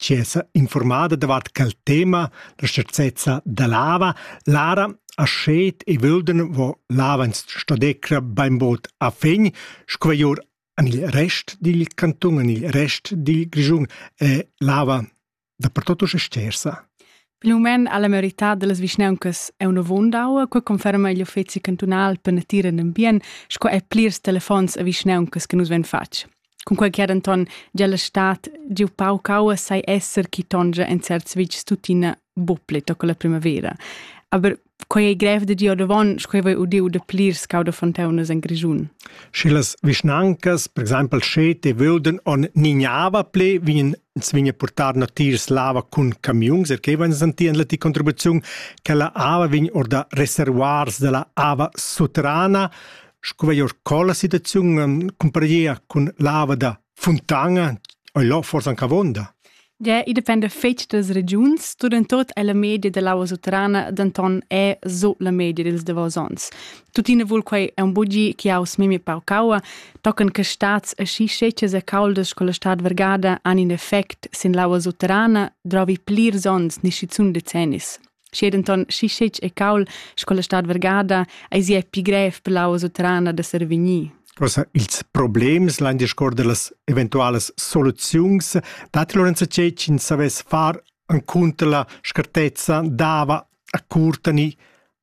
tschessa informada davart quel tema la scharzezza da lava, Lara a schet e völden vo lavans stadecra bainbod a fegn, squaior an il rest dil canton, an il rest dil Grischun è lava dappertutto stersa. Pil mument ha la merità dellas vischnauncas è una vondau, quei conferma igl uffeci cantunal per natura e ambient, sco è plirs telefons a vischnauncas che nus ven fatg. Cunquei che denton gia la stad giu pauc aua sai esser chi tongia en certs vitgs tuttina buc pli toca la primavera. Aber quei ei grev da dir ordavon, sco ei udiu da plirs cau da fonteunas en Grischun. Sche las vischnancas, per exempel Schete, vöden on nignava ple, vien ins vien portar natiers lava cun camiuns, er che van sentien la ti contribuziun che la ava vien orda reservoirs della ava soterrana. Sco veio sco la situaziun cumparegia cun l'ava da Fontana, ei là forse anche avonda? Ja, i depende fetg das regiuns, tot è la media dell'aua sutterrana denton è so la media dels davos ons. Tuttina vul quei è un bugi che aus memi paucaua, tocan che stats e schi scecas e caldas con la stad vergada han in effect sin l'aua sutterrana, drovi plirs ons, nisci zun decennis. Schi denton schi scetg e caul sco la stad vergada eis ei pi grev per la usutrana da survegnir. Cosa, ils problems l'han discordo las eventualas soluziuns datti Lorenzo Cecin savess far encunter la scartezza dava a curtani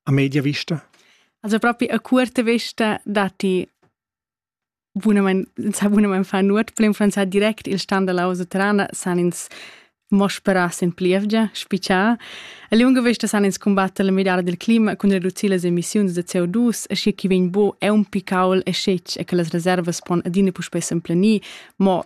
a media vista? Also proprio a curta vista datti Bunamein, sa bunamein far nuot, per influenzar direct il stand dalla house trana san ins mo sperar sin plievgia, spitschar. A lunga vesta san ins combatter la midada dil clima cun reducir las emissiuns da CO2, aschi che vegn bo è un picaul e scetg e che las reservas pon adina puspei s'emplenir, mo